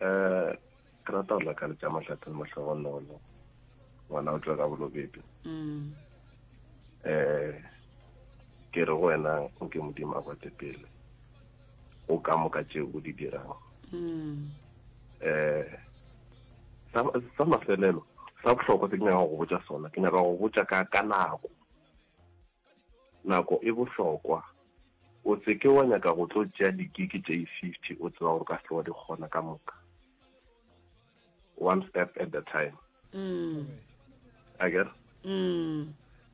um ke rata go lakaletša mahlatheng motlhogonolo ngwana o tswa ka bolobebe um ke re go wena o ke modimo a kwate pele o ka moka tšeo o di dirang um sa mafelelo sa bohlokwa se ke nyaka go botsa sona ke nyaka go botsa ka nako Nako e bohlokwa. O se ke wa nyaka go tlo tšea di-gig tše i-fifty o tseba gore o ka se wa di kgona ka moka. One step at the time. Mm. A ke re? Mm.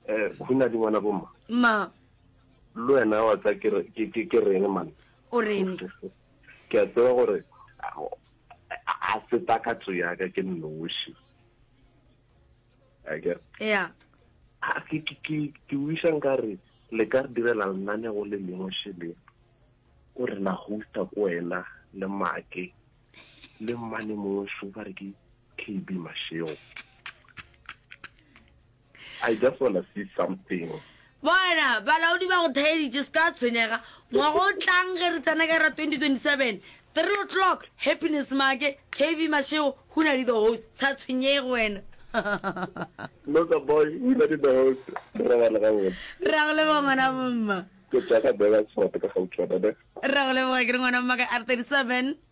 Eh, khuna di ngwana bomma. Ma. Le wena wa tsa ke re ke ke ke reng man. O reng? Ke a tseba gore a se takatso ya ka ke nnoši. ya ke wisa nkare le ka re direla lenanego le lengwe shele o re la hosta ko wena le make le mmane mongwe so ba re ke kb masheo i just wanna see something Bona, balaodi ba go thaeditše, se ka tshwenyega. Ngwaga o tlang ge re tsena ka ra 2027, three o'clock, Happiness Maake, KV Mashego, Hunadi the host. Sa tshwenyege wena. Loka boy, Hunadi the host, re robale gabotse. Re a go leboga ngwana bomma. Ke tšwa ka Burgersfort ka Gautshwane ne. Re a go leboga, ke re ngwana bomma ka R37.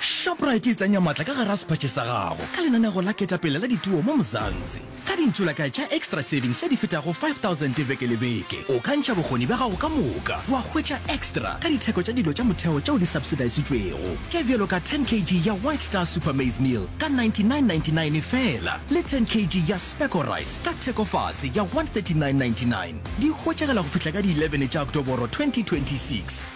shoprite e tsenya maatla ka gara sephatše sa gago ka lenanego la ketapele la dituo mo mozantsi ka dintsola ka tša extra savings tša di fetago 5000 beke le beke o ka ntšha bokgoni bja gago ka moka wa hwetša extra ka ditheko tša dilo tša motheo tšeo di subsidisitšwego tše bjalo ka 10 kg ya white star super maize meal ka 9999 fela le 10 kg ya speco rice ka thekofase ya 13999 di hwetšagela go fihla ka di 11 tša oktoboro 2026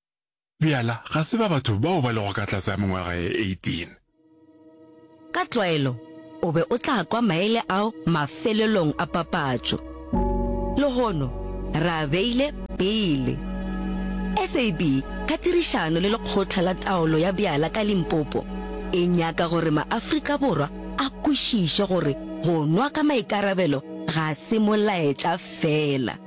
Bjala ga se ba batho bao ba lego ka tlase ga mengwaga ye 18. Ka tlwaelo o be o tla kwa maele ao mafelelong a papatšo. Lehono re a beile pele. SAB ka tirišano le Lekgotla la Taolo ya Bjala ka Limpopo e nyaka gore maAfrika Borwa a kwešiše gore go nwa ka maikarabelo ga se molaetša feela.